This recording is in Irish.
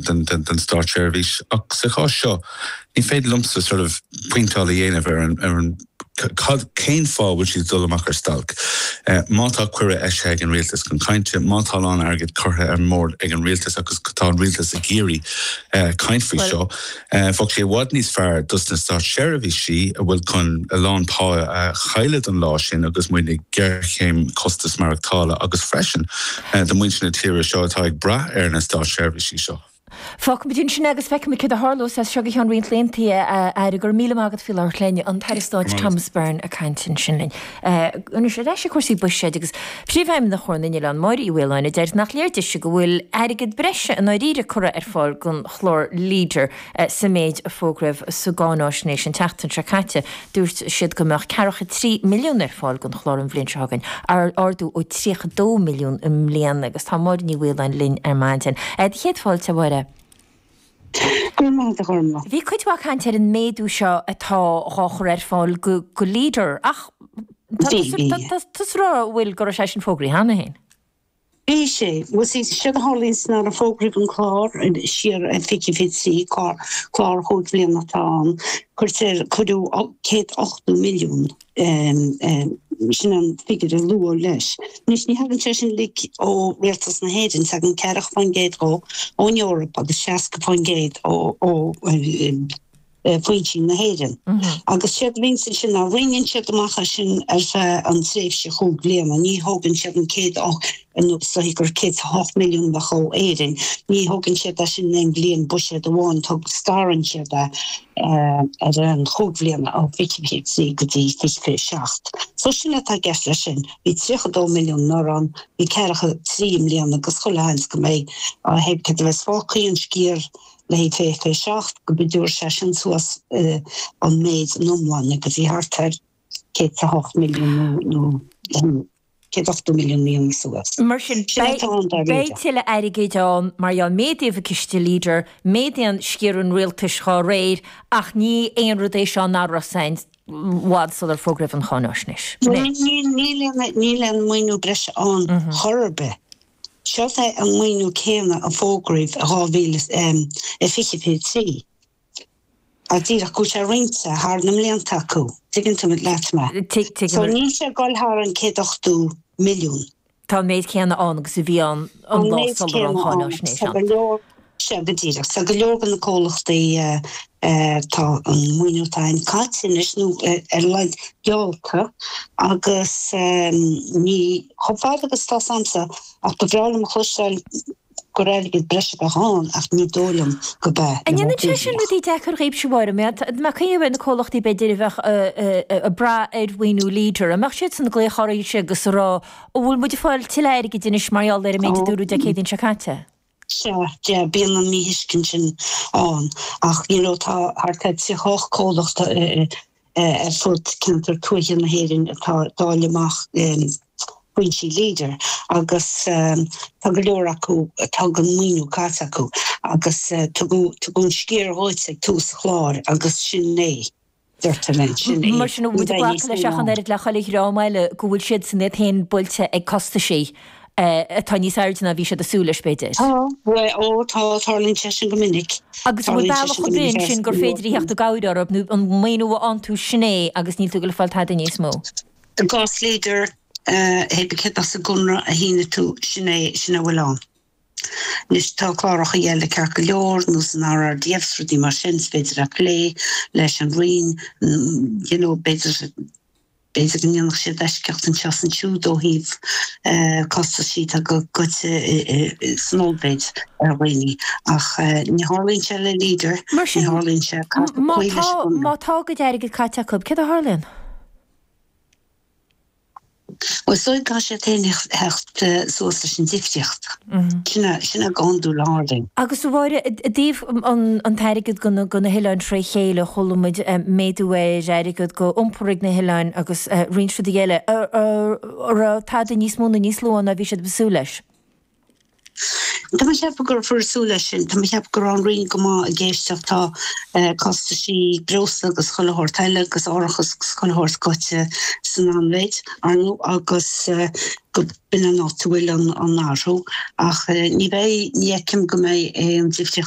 den státseirbhís. Ach sa chás seo, ní féidir liomsa sort of pointeáil a dhéanamh ar an ar an cén fáth a bhfuil siad ag dul amach ar stailc. Má tá cuireadh eisithe ag an rialtas chun cainte, má tá a lán airgid curtha ar an mbord ag an rialtas agus tá an rialtas ag iarraidh caint faoi seo, bheadh sé i bhfad níos fearr dos na státseirbhísí a bhfuil chun a lán pá a chailleadh don lá sin agus muid i ngéarchéim costas maireachtála agus freisin, do mhuintir na tíre seo atá ag brath ar na státseirbhísí seo. Fágfaimid ansin agus feicfimid céard a tharlós as seo go ceann roinnt laethanta, a Aire. Go raibh míle maith agat faoi láthair. Lean an tAire Stáit Thomas Byrne ag caint ansin linn. Anois ar ais ag cúrsaí buiséid agus Príomhfheidhmeannach Chomhar na nOileán, Máire Uí Mhaoláin, a deir nach léir dise go bhfuil airgead breise i ndáiríre curtha ar fáil don chlár Leader. Sa mhéid a fógraíodh sa gcáináisnéis an tseachtain seo caite, dúirt siad go mbeadh ceathracha 3 milliún ar fáil don chlár an bhliain seo chugainn, ardú ó 32 milliún i mbliana, agus tá Máire Uí Mhaoláin linn ar maidin. Do chéad fáilte, a Mháire. Go raibh maith agat, a Ghormlaith. Bhí cuid mhaith cainte ar an méadú seo atá dhá chur ar fáil go Leader ach tá tusa ag rá, a bhfuil, go raibh sé sin fógraí cheana féin. Bhí sé, nó sí, séard a tharlaíonn nuair a fógraíodh an clár siar i 2023, clár, clár chúig bhliana atá ann, cuirtear, cuireadh céad ochtó milliún, sin an figiúr a luadh leis. Anois ní thagann sé sin uilig ó rialtas na hÉireann, tagann ceathracha faoin gcéad dhó ón Eoraip agus seasca faoin gcéad ó, ó, ó chistí na hÉireann agus séard a dhéanann siad ansin ná roinneann siad amach é sin ar feadh an tréimhse chúig bliana. Ní thógann siad an céad ochtó nó is dóigh gur 108 milliún a bheadh ó Éirinn. Ní thógann siad é sin in aon bhliain buiséad amháin tog, scarann siad é ar fheadh chúig bhliana ó 23 go dtí 27. So sin atá i gceist le sin. Bhí 32 milliún anuraidh ann, bhí 43 i mbliana agus chuile sheans go mbeidh. Ó thaobh cad a bheas fágtha an sciar le haghaidh fiche fiche seacht go dtabharfaidh sé sin suas an méid in iomlán agus í thart ar céad a hocht milliún nó céad ochtó milliún míonna suas. Ní bheidh tuilleadh airgid ann mar gheall méadaíodh an ciste Leader, méadaíodh an sciar an rialtais dá réir, ach ní aon rud é seo nach raibh a fhios i bhfad sular fógraíodh an cháináisnéis. Níl aon maoiniú breise ann chor ar bith. Seo é an maoiniú céanna a fógraíodh i 2023. Tá díreach go bhfuil sé roinnte thar na mblianta acu. An dtuigeann tú leat mé. So níl sé ag dul thar an 180 milliún. Tá an méid céanna ann agus a bhí ann an lá sular an cháináisnéis ann. Sea, go díreach. So go leor de na comhlachtaí tá an maoiniú atá ann caite anois, nó ar a laghad geallta, agus níl chomh fada agus atá s'agamsa, ach ba bhreá liom a chloisteáil gur airgead breise a bheadh ann, ach ní dóigh liom gurb ea, An ndéanann sé sin rudaí deacair dhaoibhse a Mháire? Mar tá cuid de na comhlachtaí b'fhéidir a bheadh ag brath ar mhaoiniú Leader, an mbeadh siadsan ag glaoch oraibhse agus ag rá, an bhfuil muid ag fáil tuilleadh airgid anois mar gheall ar an méid a dúradh Dé Céadaoin seo caite? Sea, sea, bíonn an míthuiscint sin ann ach you know tá thart ar thríocha hocht comhlacht ar fud ceantair tuaithe na hÉireann atá ag dáileadh amach foinsí Leader agus tá go leor acu atá an maoiniú caite acu agus tugadh an sciar dóibh ag tús an chláir agus sin é. deirtear ansin é. Mar sin, glacaim leis ach an oiread le chuile dhream eile go bhfuil siadsan iad féin buailte ag costaisí atá níos airde ná a bhí siad ag súil leis, b'fhéidir. Tá. Bhuel, ó tá, tarlaíonn sé sin go minic. Agus an bhfuil bealach ar bith ansin gur an féidir a theacht i gcabhair orthu nó ón maoiniú a aontú, sin é agus níl tú ag goil ag fáil tada níos mó? I gcás Leader, thig cead as an gconradh a shínigh tú, sin é, sin a bhfuil ann. Anois tá cláracha eile ceart go leor ar nós an RRDF 's rudaí mar sin 's b'fhéidir a' plé leis an Roinn you know b'fhéidir b'fhéidir go ndéanfadh siad eisceacht anseo 's ansiúd ó thaobh costaisí atá goite san ollmhéid ar dhaoine ach ní tharlaíonn sé le Leader ní tharlaíonn sé caithfidh tú cloí leis an gconradh. Má tá a gcuid airgid caite acu cad a tharlaíonn? Bhuel, caithfidh siad féin a theacht suas leis an difríocht. Sin é go hiondúil a tharlaíonns. Agus a Mháire, i dtaobh an t-airgead do na hoileáin fré chéile, chuala muid méadú ar airgead do iompar ag na hoileáin agus roinnt rudaí eile. An raibh tada níos mó nó níos lú ann ná bhí siad ag súil leis? Tá mé ag ceapadh go raibh súil leis sin. Tá mé ag ceapadh go raibh an Roinn go maith ag éisteacht. Tá costaisí breosla agus chuile shórt eile agus árachas agus chuile shórt goite san ollmhéid, ar ndú, agus go b'in an áit a bhfuil an an athrú. Ach ní bheidh, ní fheicim go mbeidh aon difríocht.